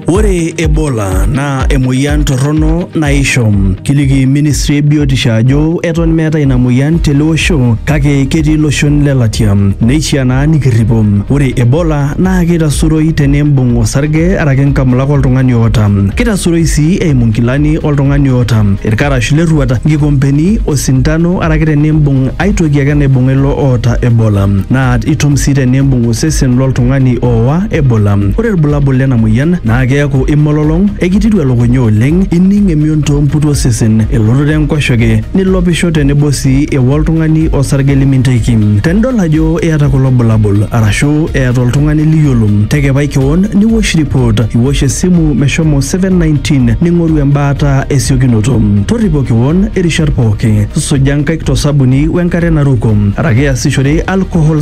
Ore Ebola naa emoyian torrono naisho. Kiliki ministry e biotisho ajo eton meetae ina moyian tele osho kake ketii iloshon le latia. Neishiaa naa nikirripo. Ore Ebola naa keitasuroi tenimbung osarge araki inkamulak oltung'ani oota. Keitasuroi sii eimu nkilani oltung'ani oota, irkarash le rruat, nkikompeni, osindano araki tenimbung ae toki ake naibung'a ilo oota Ebola. Naa itum sii tenimbung sesen loltung'ani ooa Ebola. Ore ilbulabul lena moyian naa keaku imololong, ekititu elukunya oleng, ining emion too mputu osesen, elototo enkoshoke, nilopisho tenebo sii eo oltung'ani osarge liminteki. Tenidol ajo iyata kulo bulabul arashu eeta oltung'ani liyiolo, tekepai kewon niwosh ripot, iwosh esimu meshomo 719 ning'oru embaata esiokinoto. Torripo kewon irishat pooki, suja nkaik to sabuni wenkare naruko araki iasishore alcohol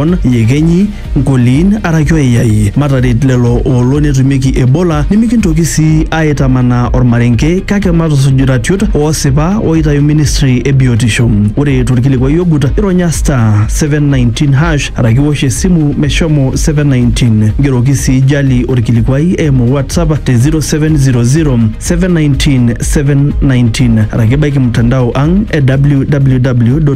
Lebanon, iyekenyi, nkoliin araki oiyai. Mataret lelo oolo netumieki Ebola nimikintoki sii aaitamanaa olmarenke kake matusuj iratiot oosipa ooitayu ministry e biotisho. Ore tolkilikuai ogut, ironya *719# araki iwosh esimu meshomo 719. Ngeroki sii Jali olkilikuai eimu WhatsApp te 0700 719 719 araki ibaiki mtandao ang e www.